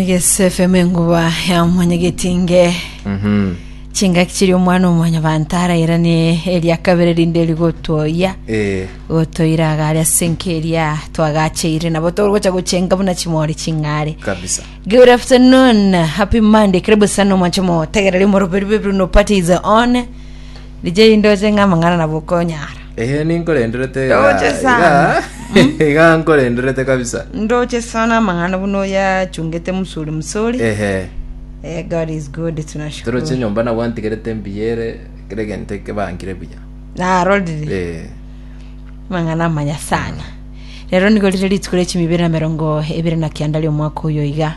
Egese FM enguba ya omonyegetinge Mhm. chingaki chiri omwana omonyabanto arairane eria kabere rinde rigotwoyia Eh, gotoira agare ase enka eria twagacheire nabo togocha gochenga buna chimori ching'are kabisa Good afternoon, happy Monday. Karibu sana mwachomo. Tegereri moroberu bebiru no party is on. Richa eri ndoche ng'a amang'ana nabo okonyara. Ehe ninkorenderete iga Ndoche iga sana. iga nkorenderete kabisa Ndoche sana amang'ana buna oyachungete msuri msuri. ehe Eh, God is good, toroche tunashukuru. nyomba nabo antigerete mbuya ere kera egento ekebangire buya Narorire. Eh, mang'ana amanya sana rero nigo rire rituko ria chimibere na merongo ebere na kianda ria omwaka oyo iga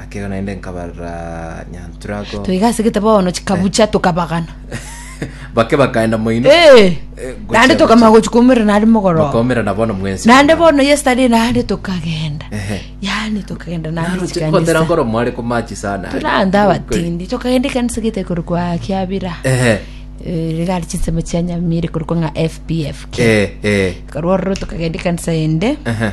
Akero naende nkabarora nyantura ako. Toiga ase gete bono chikabucha tokabagana. Bake bakaenda moino. Eh, Eh, gochia, naende tokamanya gochia. gochia koumera nari mogoroba. Bakaumera na bono mwensi. Naende bono yesterday naende tokagenda. Ehe. Yaani tokagenda naende Naroche chikanisa. kotera nkoro mware komachi sana. Turande abatindi tokagenda ekanisa gete kore kwa kiabira Ehe. Eh, rigari chinsemo chia nyamire kore kwa ng'a fpfk Eh, eh. korwa ororo tokagenda ekanisa ende Ehe.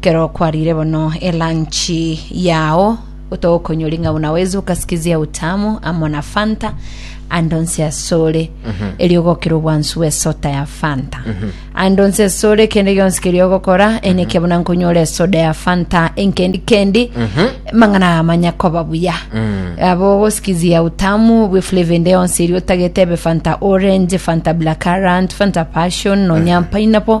Kero kwarire bono elanchi yao tokonyoria ng'a buna wezi okasikizia utamu amo na fanta ande onsi asore erio ogokira obwansu bw'esota ya fanta ande onsi asore kende gionsi keria ogokora eneke buna nkonyora esoda ya fanta enkendi kendi mang'ana amanya koba buya abo ogosikizia utamu bwe flavor ende yonsi erio otagete ebe fanta orange fanta black currant fanta passion nonya pineapple